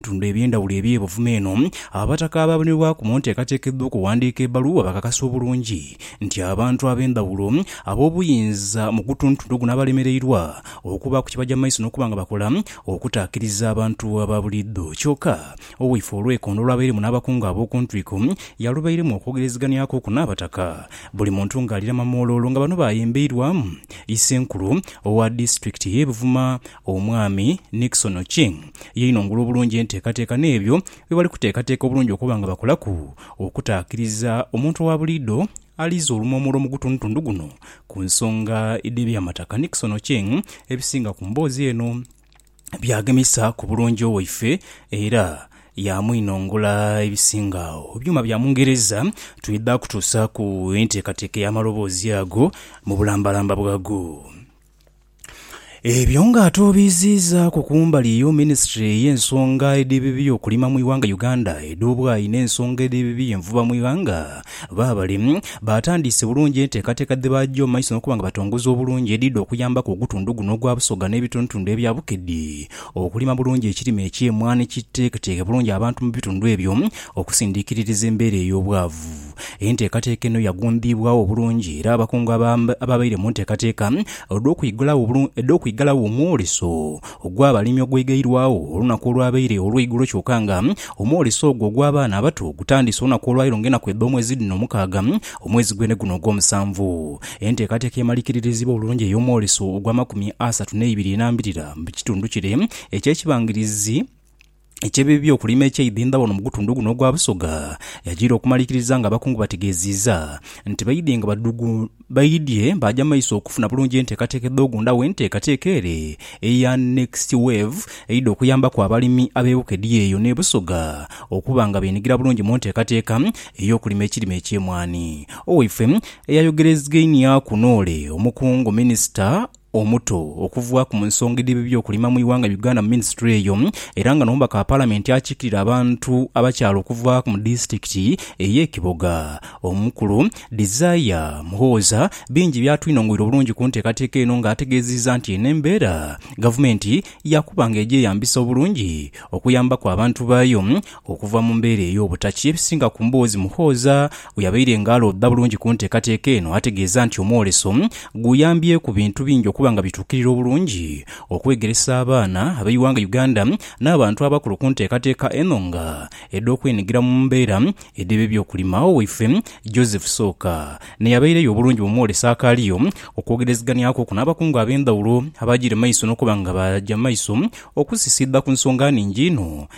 bitundu eby'endhawulo eby'ebuvuma eno, Abataka abaabonebwaku mu nteekateeka edh'okuwandiika ebbaluwa bakakasa obulungi nti abantu ab'endhawulo ab'obuyinza mu gutuntuntu guno abalemereirwa okubaaku kye baja mu maiso n'okuba nga bakola okutaakiriza abantu aba buliidho. Kyoka Owaife Olwekondo olwabairemu n'abakungu ab'oku ntwiko yalubairemu okwogereziganiaku oku n'Abataka, buli muntu ng'alirama mu oloolo nga bano baayembeirwamu Isenkulu owa disitulikiti y'e Buvuma, Omwami Nixon Ochieng yainongula obulungi enteekateeka n'ebyo bye bali kuteekateeka obulungi okuba nga bakolaku okutaakiriza omuntu owa buliidho aliiza olumomolo mu gutundutundu guno ku nsonga dh'ebyamataka Nixon Ochieng ebisinga ku mboozi eno byagemisa ku bulungi owaife era yaamwinongola ebisinga agho ebyuma bya mungereza twidha kutuusaaku enteekateeka ey'amaloboozi ago mu bulambalamba bwago. Ebyo nga atuubiiziizaaku kumbali y'omuminisitule ey'ensonga edh'ebibi okulima mu ighanga Uganda edh'obwayi n'ensonga edh'ebibi envuba mu ighanga, baabale baatandiise bulungi enteekateeka dhe baaja mu maiso n'okuba nga batongoza obulungi edhidha okuyambaku ogutundhu guno ogwa Busoga n'ebitundhutundhu ebya Bukedi okulima bulungi ekirime eky'emwaani kiteeketeeke bulungi abantu mu bitundhu ebyo okusindiikiririza embeera ey'obwavu. Enteekateeka eno yagundiibwagho obulungi era abakungu abaabaire mu nteekateeka edh'okwighalagho omwoleso ogw'abalimi ogweghairwagho olunaku olwabaire olweigulo kyoka nga omwoleso ogwo ogw'abaana abato gutandise olunaku olwaleero nga enaku edh'omwezi dhino mukaaga omwezi gwene guno ogw'omusanvu. Enteekateeka emalikirirezibwa obulungi ey'omwoleso ogw'amakumi asatu n'eibiri enambirira mu kitundu kire eky'ekibangirizi. Eky'ebibi okulima ekyeidhindha wano mu gutundu guno ogwa Busoga, yajiira okumalikiriza nga abakungu bategeeziiza nti baidhye nga badhugu baidhye baaja maiso okufuna bulungi enteekateeka edh'ogunda w'enteekateeka ere eya Next Wave eidha okuyambaku abalimi ab'ebuka edhiya eyo n'e Busoga okuba nga beenhigira bulungi mu nteekateeka ey'okulima ekirime eky'emwaani. Owaifwe eyayogerezgainiaaku n'ole omukungu minisita omuto okuvaaku mu nsonga edh'eby'okulima mu ighanga Uganda mu minisitule eyo era nga n'omubaka wa palamenti akiikirira abantu abakyala okuvaaku mu disitulikiti ey'e Kiboga omukulu Desire Muhooza bingi byatwinong'oire obulungi ku nteekateeka eno nga ategeeziiza nti eno embeera gavumenti yaakuba nga egyeyambisa obulungi okuyambaku abantu baayo Okuva mu mbeera ey'obutakya, ebisinga ku mboozi Muhooza bwe yabaire nga alooda bulungi ku nteekateeka eno ategeeza nti omwoleso guyambyeku bintu bingi okuba nga bituukirira obulungi okwegeresa abaana ab'eighanga Uganda n'abantu abakulu ku nteekateeka eno nga edh'okwenhigira mu mbeera edh'ebyokulima. Agho waife Joseph Sooka n'eyabaireyo obulungi mu mwoleso akaaliyo okwogerezeghanyaku ku n'abakungu ab'endhawulo abaagire maiso n'okuba nga baaja maiso okusisiidha ku nsonga nhingi inho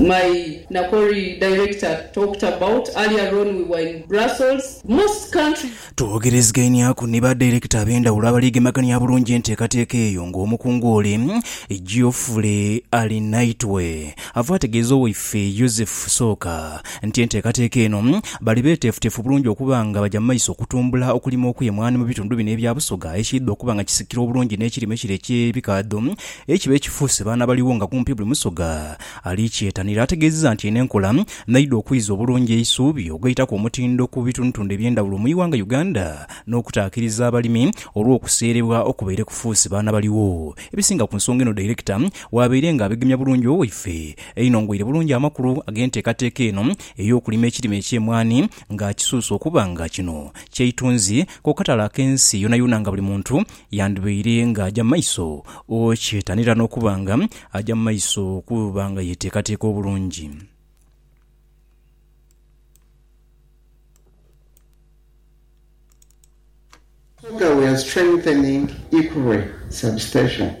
My Nakori director talked about earlier on we were in Brussels, most countries. Twogerezigainiaku ni ba Director ab'endhawulo abali gemagania bulungi enteekateeka eyo ng'omukungu ole Geoffrey Arinaitwe ava ategeeza owaife Joseph Sooka nti enteekateeka eno bali beeteefuteefu bulungi okuba nga baja mu maiso okutumbula okulima okw'emwaani mu bitundu bino ebya Busoga ekiidha okuba nga kisikira obulungi n'ekirime kire eky'ebikaadho Eyo kiba ekifuuse baana baligho nga kumpi buli Musoga ali kyetanira. Ategeezeza nti eno enkola n'eidha okwiza obulungi eisuubi ogaitaku omutindo ku bitundutundu eby'endhawulo mu iwanga Uganda n'okutaakiriza abalimi olw'okuseerebwa okubaire kufuuse baana baligho ebisinga ku nsonga eno Dairekita w'abaire nga abegemya bulungi owaife einongweire bulungi amakulu ag'enteekateeka eno ey'okulima ekirime eky'emwaani ng'akisuusa okuba nga kino kyeitunzi ku katale ak'ensi yonayona nga buli muntu Yandhibaire ng'aja mu maiso okyetanira n'okuba nga aja mu maiso okuba nga yeteekateeka obulungi. Motorway strengthening Ikurwe Substation.